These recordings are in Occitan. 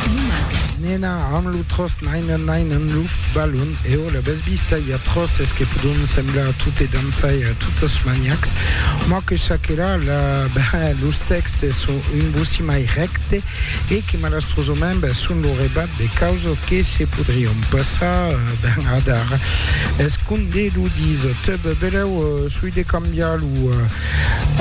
Lo mag. Nena, amb lo tros nainen nainen luft balon, e ò la bes bista, i a tròces que podon semblar a tot e dançar e a totes maniacs, mò que chaquelà la, ben, los tèxtes son un bocí mai rècte e que malastrosament, ben, son lo rebat de causes que se podrion passar, ben, adar. Escondé lo disc, teb, belèu, soi de cambiar lo.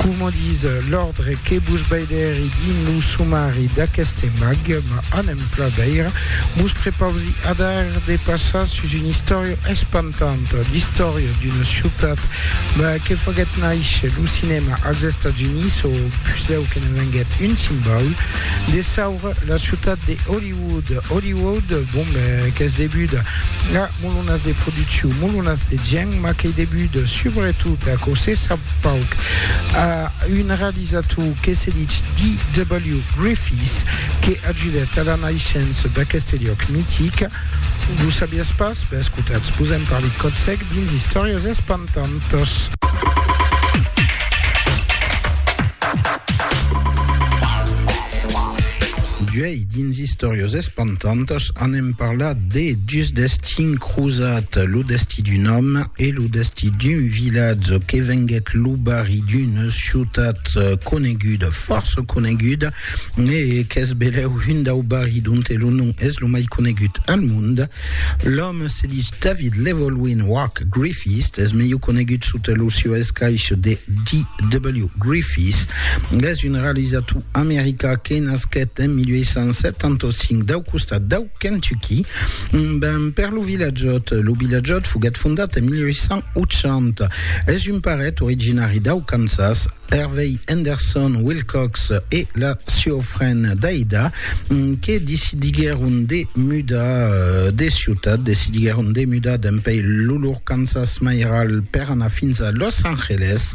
Coma dis l'òrdre que vos veidèri dins lo somari d'aqueste mag, m'a un empla veire, vos prepausi adar de passar sus una istòria espantanta, l'istòria d'una ciutat que faguèt nàisher lo cinèma als Estats Units o puslèu que ne venguèt un simbaul de saura, la ciutat de Hollywood. Hollywood, bon ben, qu'es debuda a. Molonas de produccion, molonas de gèn, mas qu'ei debut subretot a aquò se sap pauc, a un realizator que se ditz D.W. Griffiths que ajudèt a la naishença d'aqueste liòc mitic. Vos sabiatz pas? Ben escotatz, vos en parli còth sec dins Istòrias espantantas. D'uèi dins Istòrias. Tantas anem parlat de dus destin crosat, lo destí d'un òme e lo destí d'un vilatge que venguèt lo barri d'una ciutat coneguda, fòrça coneguda, e qu'es belèu un dau barri donte lo nom es lo mai conegut al monde. L'òme se dich David Llewelyn Wak Griffiths, es melhor conegut sota lo sieu escaich de DW Griffiths. Es un realizator americà que nasquèt en 1875 dau costat dau Kentucky, ben per lo Vilatjòt. Lo Vilatjòt foguèt fondat en 1880. Es un paret originari dau Kansas. Hervey Henderson Wilcox e la sieu frend Daida que decidiguèron de mudar de ciutat, decidiguèron de mudar dempèi lo lor Kansas mairal per anar fins a Los Angeles.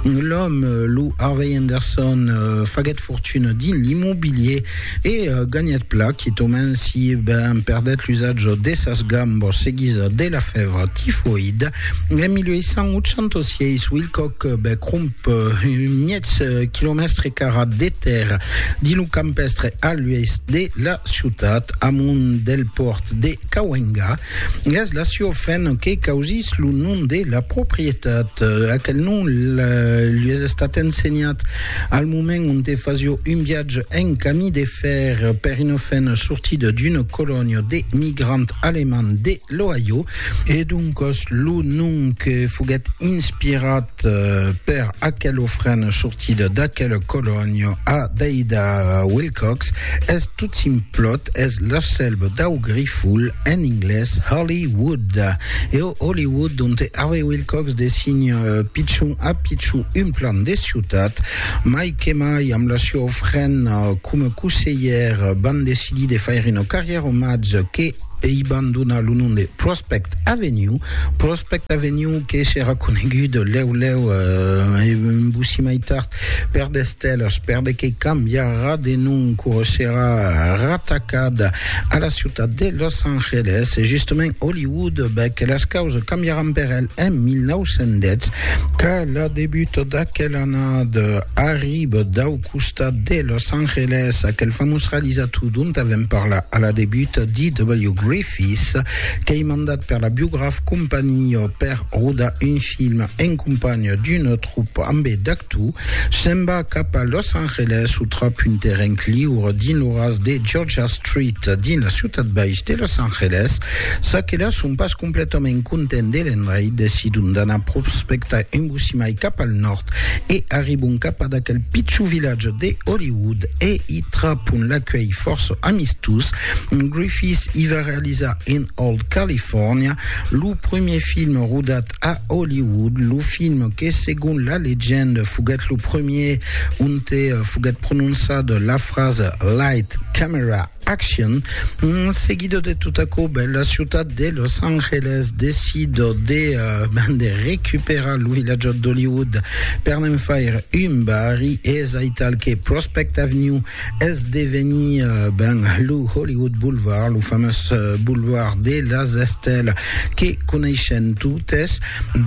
L'òme, lo Harvey Henderson, faguèt fortuna dins l'immobilier e ganhèt pla quitament si ben perdèt l'usatge de sas gambas seguida de la fèvra tifoïda en 1886. Wilcock becromp 1.000 quilomèstre carat de tèrra dins lo campèstre a l'oèst de la ciutat, amont del pòrt de Cahuenga. Gas la Ciofen que causís lo nom de la proprietat. Aquel nom lues estat ensenhat al moment onte fasio un viatge en camí de fer per una fen sortida d'una colònia de migrants alemands de l'Ohio e doncas lo nom que foguèt inspirat Per aquel ofrent sortit d'aquel colònia a Deida Wilcox es tot simplot, es l'asselb dau grifol, en inglés Holly Wood. E o Holly Wood donte Harvey Wilcox design pichon a pichon un plan de ciutat, mai que mai amb la sua ofrent coma coseller van decidir de faire una carrièra omatge que Ei ban donar lo nom de Prospect Avenue, Prospect Avenue que serà conegut lèu lèu e vossi mai tard per The Stellars, per de que cambiarà de nom quò serà ratacat a la ciutat de Los Angeles e justament Hollywood, bèth que las causas cambiaràn per el en 1910, qu'a la debut d'aquel annada arriba dau costat de Los Angeles, aquel famós realizator dont avèm parlat a la debut, D.W. Griffiths, qu'ei mandat per la Biograph Company per rodar un film en companh d'una tropa ambé d'actors, se'n va cap a Los Angeles o trap un terren cliur dins lo ras de Georgia Street dins la ciutat baix de Los Angeles, çaquelas son pas Completament content de l'endreit, decidon d'anar prospectar un bocí mai cap al nòrd e arribon cap ad aquel pichon vilatge de Hollywood e i trapon l'acuelh fòrça amistós. Griffith i va realizar In Old California, lo premier film rodat a Hollywood, lo film que segon la legenda foguèt lo premier onte foguèt prononçada la frasa Light, Camera, Action. En seguida de tot aquò, ben, la ciutat de Los Angeles decida de, uh, ben, de recuperar lo vilatjat d'Hollywood per n'en faire un barri, es aital que Prospect Avenue es devenir, uh, ben, lo Hollywood Boulevard, lo famós uh, boulevard de las estèlas que coneishen totes.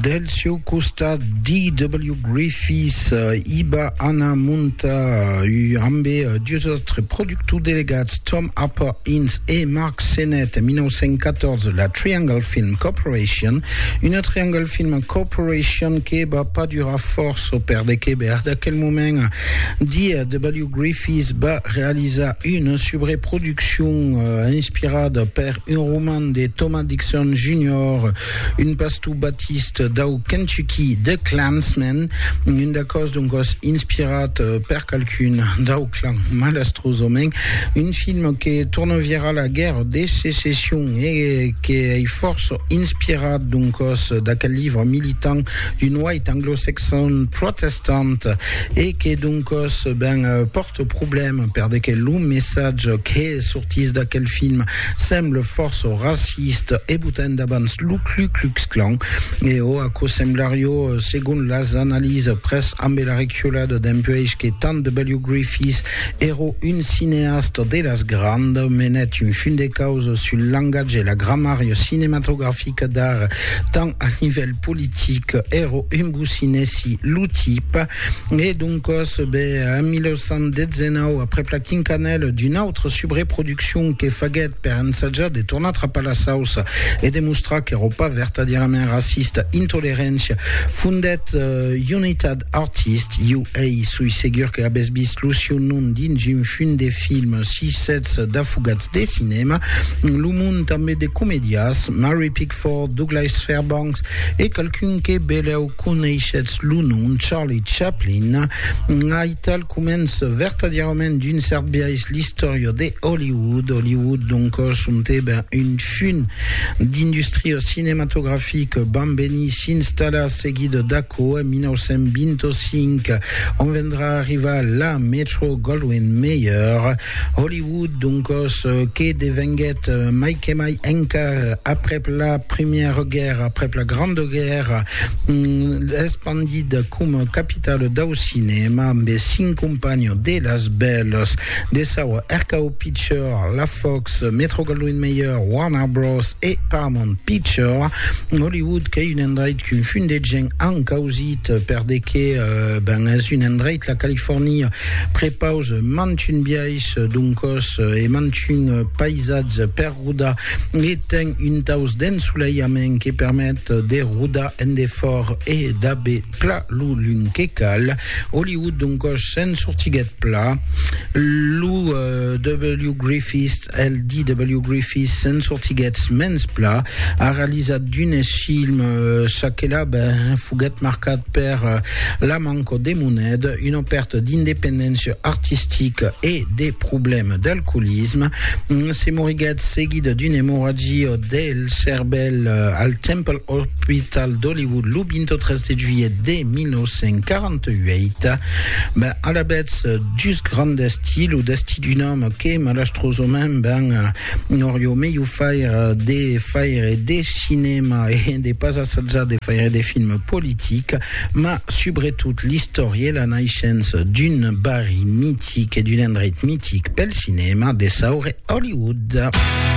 Del seu costat, D.W. Griffiths uh, i va anar montar uh, ambe uh, dus autres productors To delegats Tom Harper Ince e Mark Sennett, 1914, la Triangle Film Corporation, una Triangle Film Corporation que va pas durar fòrça perdeque bèr d'aquel moment dia W. Griffiths va realizar una subreproduccion inspirada per un roman de Thomas Dixon Junior, Un pastor batist dau Kentucky de Klansmen, un d'aquò's doncò's inspirat per qualqu'un dau clan malastrosament, un film que torna virar la guèrra de secession e que ei fòrça inspirat doncò's d'aquel livre militant d'un white anglo-saxon protestant e que doncò's ben pòrta Ce problème perde que lo messatge que sortís d'aquel film semble fòrça racist e botant davans lo Klu Klux Klan. E o aquò semblarió, segon las analisas, pres ambe la reculada dempuèish que tant de W. Griffith èro un cineasta de las grand, menèt un fum de causa sul langatge e la gramària cinematografica d'ara tant al nivèl politic, èro un bousinèsi lo tip. E doncas, be, en 1819, aprèp la quincanèla d'una autra subreproduccion que faguèt per ensajar de tornar trapar la sauça e de mostrar qu'èra pas vertadierament racista, Intoleréncia fondèt Unitat Artist, UA, soi segur que avètz vist lo sieu nom dins un fum de film, si sètz d'afogats de cinèma, lo mond tanben de comedias, Mary Pickford, Redford, Douglas Fairbanks e qualqu'un que belèu coneishetz lo nom Charlie Chaplin, aital comença vertadièrament d'un cèrt biais l'istòria de Hollywood. Hollywood, donc, sontèba un fum d'industria cinematografica, vam venir s'installar seguida d'aquò en 1925, ont vendrà arrivar la Metro-Goldwyn-Mayer, Hollywood, doncos, que devenguèt mai que mai encar aprèp la Primièra Guèrra, aprèp la Granda Guèrra, espandida coma capitala dau cinèma amb es cinc companhons de las bèlas de saua RKO Picture, la Fox, Metro-Goldwyn-Mayer, Warner Bros. E Paramount Picture. Hollywood qu'ei un endreit qu'un fum de gent an causit per de que, ben, es un endreit, la Califòrnia, Prepause mantun biais d'un còs e mantun paisatge per rodar e ten un taus d'ensoleiament que permet de rodar en defòrt e d'aver pla lo lum que cal. Hollywood d'un còs se'n sortiguèt pla. Lo W. Griffith, el DW Griffith, se'n sortiguèt mens pla. A realizat d'unes films, çaquelà ben, foguèt marcat per la manca de moneda, una pèrta d'independéncia artistica e de problèma d'alcoolisme. Se moriguèt seguida d'una emorragia del cervèl al Temple Hospital d'Hollywood lo 23 de juilhet de 1948. Alavetz, just grand destí, lo destí d'un òme que malastrosament ben Nòr jo me jo faire de faire de cinema e de pas assajar de faire de film politic, mas subretot l'istòria e la naishença d'un barri mitic e d'un endreit mitic pel cinema, de saure Hollywood.